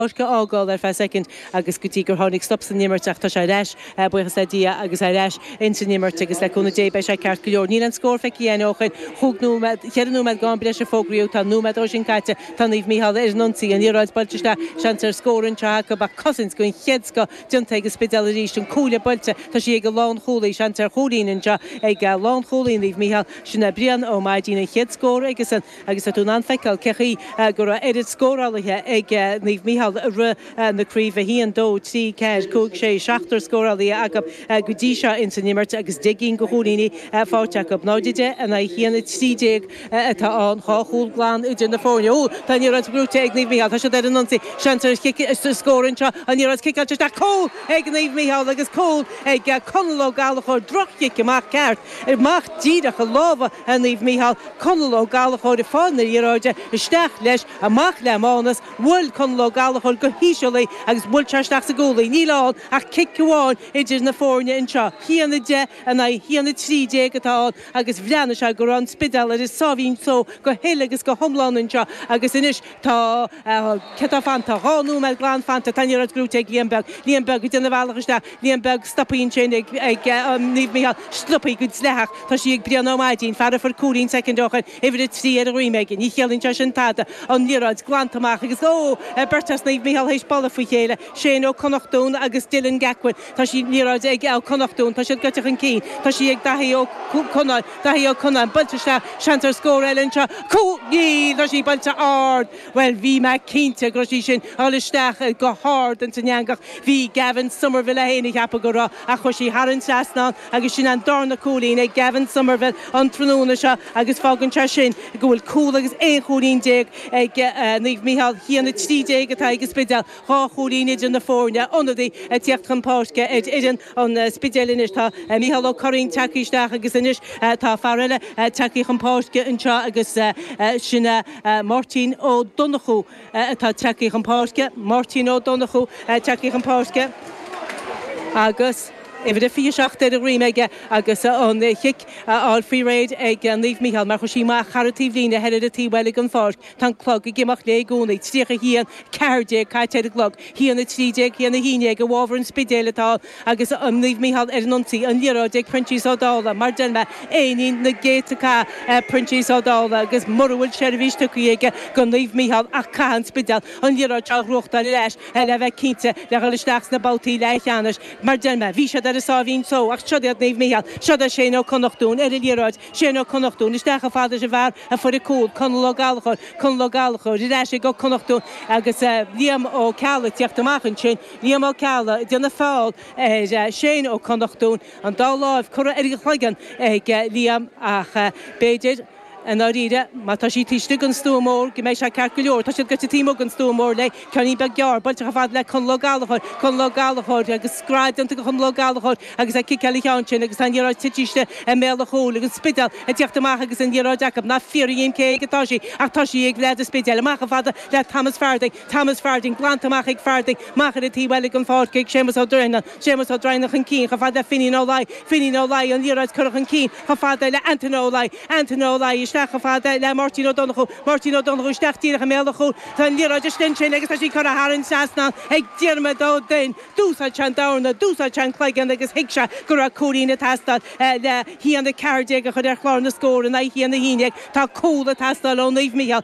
páirc a fhágáil ar feadh soicind agus go dtí gur tháinig stop san imirt ach tá sé ar ais, buíochas le Dia, agus ar ais ins an imirt agus le cúnamh Dé beidh sé ceart go leor. Níl aon scór feicthe againn ó shin. Chúig nóiméad, cheithre nóiméad d'am breise a fógraíodh, tá nóiméad de sin caite, tá Naomh Micheál ar an ionsaí, an liathróid buailte isteach, seans ar scór anseo acu ach cosaint den chéad scoth déanta ag an Spidéal arís, an cuaille buailte, tá sí ag an lánchúlaí, seans ar chúilín anseo ag lánchúlaí Naomh Micheál, sin é Brian Ó Maidín, an chéad scór aigesan. Agus tá tú in ann feiceáil cé chaoi go raibh oiread scórálaithe ag Naomh Micheál i rith na craoibhe, 1, 2, 3, 4, 5, 6, seachtar scórálaithe acu go dtí seo ins an imirt agus deich gcinn de chúilíní faighte acu. 0, 10 in aghaidh 1, 13 atá ann, dhá chúl glan idir na foirne. Ó! Tá an liathróid gnóite ag Naomh Micheál. Tá siad ar an ionsaí. Seans ar scór anseo. An liathróid ciceáilte isteach. Cúl ag Naomh Micheál agus cúl ag Conall Ó Gallchóir. Droch-chic amach ceart. Amach díreach i lámha Naomh Micheál. Conall Ó Gallachóir ag fáil na liathróide isteach leis, amach le Mánas, bhuail Conall Ó Gallachóir go híseal í agus bhuail sé isteach sa gcúl í. Níl ann ach cic amháin idir na foirne anseo. 1, 10 in aghaidh 1, 13 atá ann agus bhreathnaigh sé go raibh an Spidéal ar a sáimhín só go huile agus go hiomlán anseo agus anois Tá céard atá fanta. Dhá nóiméad glan fanta. Tá an liathróid gnóite ag Liam Beag. Liam Beag ag déanamh a bhealach isteach. Liam Beag, stoptha ansin ag Naomh Micheál. Stoptha go dleathach. Tá sí ag Brian Ó Maidín. Fear a fuair cúilín soicind ó shin, uimhir a trí ar a dhroim aige. Ní chiallaíonn sé sin tada. An liathróid glanta amach agus, óóó! Beirt as Naomh Micheál théis bualadh faoi chéile, Shane Ó Connachtún agus Dylan Gacquin. Tá sí, an liathróid, ag Ó Connachtún, tá siad gaibhte chun cinn, tá sí ag Daithí Ó Conláin, Daithí Ó Conláin, buailte isteach, seans ar scór eile anseo, cúl! Níl! Tá sí buailte ard! Bhuel, bhí mé cinnte go raibh sí sin, dul isteach i, go hard ins an eangach, bhí Gavin Somerville é féin ag ceapadh go raibh, ach chuaigh sí thar an trasnán agus sin an darna cúilín ag Gavin Somerville an tráthnóna seo agus fágann sé sin go bhfuil cúl agus aon chúilín déag ag Naomh Micheál, 1, 13 atá ag an Spidéal. Dhá chúilín idir na foirne, ionadaí ag tíocht chun páirce ar fhoireann an Spidéil anois. Tá Micheál Ó Curraoin tagtha isteach agus anois tá fear eile tagtha chun páirce anseo agus sin Máirtín Ó Donnchú atá tagtha chun páirce. Máirtín Ó Donnchú tagtha chun páirce agus uimhir a 27 ar a dhroim aige agus an chic á fháil faoi réir ag Naomh Micheál mar chuaigh sí amach thar an taobhlíne thoir ar an taobh eile den pháirc. Tá an clog ag imeacht léi i gcónaí. Tríocha a haon, a ceathair déag caite ar an gclog. Haon a trí déag, haon a haon déag. I bhfabhar an Spidéil atá ann agus Naomh Micheál ar an ionsaí. An liathróid ag Proinsias Ó Dálaigh. Mar a deir mé, éinín na gcéadta cath Proinsias Ó Dálaigh agus mura bhfuil seirbhís tugtha aige do Naomh Micheál ach caithfidh an Spidéal an liathróid seo a ghnóthachtáil ar ais le bheith cinnte de dhul isteach sna babhtaí leathcheannais. Mar a deir mé, bhí siad ar a sáimhín só ach siod iad Naomh Micheál. Siod é Shane Ó Connachtún ar an liathróid. Séan Ó Connachtún, isteach chomh fada leis an bhfear a fuair an cúl, Conall Ó Gallchóir, Conall Ó Gallchóir, ar ais ag Ó Connachtún agus Liam Ó Ceallaigh ag teacht amach ansin, Liam Ó Ceallaigh ag déanamh feall ar Shéan Ó Connachtún, an dá láimh curtha ar a chloigeann ag Liam ach b'fhéidir, i ndáiríre, má tá siad taobh istigh den stua mór, go mbeidh sé ceart go leor. Tá siad gaibhte taobh amuigh den stua mór léi. Ceainnín beag gearr, buailte chomh fada le Conall Ó Gallchóir, Conall Ó Gallchóir, agus scread déanta ag Conall Ó Gallchóir agus é ag ciceáil an cheann sin agus tá an liathróid tite istigh i mbéal an chúil agus an Spidéal ag teacht amach agus an liathróid acu. Ná fiafraigh dhíom cé aige atá sí ach tá sí ag leaid an Spidéil. Amach chomh fada le Thomas Farthing, Thomas Farthing, glanta amach ag Farthing, amach ar an taobh eile den pháirc ag Séamus Ó Droighneáin. Séamus Ó Droighneáin chun cinn chomh fada le Finín Ó Laoi, Finín Ó Laoi, an liathróid curtha chun cinn chomh fada le Antaine Ó Laoi, Antaine Ó Laoi, isteach chomh fada le Máirtín Ó Donnchú, Máirtín Ó Donnchú, isteach díreach i mbéal an chúil tá an liathróid is linn sin agus tá sí curtha thar an trasnán ag Diarmaid Ó Duinn. D'úsáid sé an dorna, d'úsáid sé an cloigeann agus thuig sé go raibh cúilín ag teastáil le haon a 14 a chur ar chlár na scór in aghaidh a haon a 11. Tá cúl ag teastáil ó Naomh Micheál.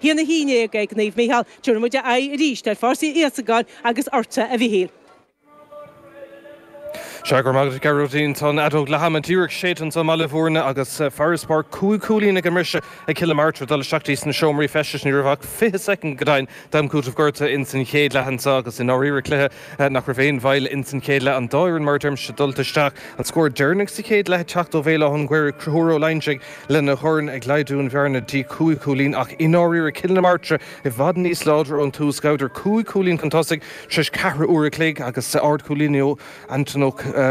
A haon a haon déag ag Naomh Micheál. Tabharfaidh muid aghaidh arís ar Pháirc Íosagáin agus ortsa, a Mhichíl. Sea, go raibh maith agat, a Ghearóidín. Tá an fheadóg leath-ama díreach séidte anseo i mBaile Mhúirne agus farasbarr cúig chúilín ag an mbriseadh ag Cill na Martra. Dul isteach dtí sna seomraí feistis ní raibh ach fiche soicind go deimhin d'am cúiteamh gorta ins an chéad leath anseo agus i ndáiríre cluiche nach raibh aon mhoill ins an chéad leath. An dá fhoireann, mar a deirimse, dulta isteach. An scór deireanach sa chéad leath ag teacht ó Bhéal Átha an Ghaorthaidh, Conchúr Ó Loingsigh. lena dhorn ag laghdú an bhearna dtí cúig chúilín ach i ndáiríre Cill na Martra i bhfad níos láidre ón tús, ghabhadar cúig chúilín chun tosaigh tar éis ceathrú uair an chloig agus ardchúilín ó Antóin Ó.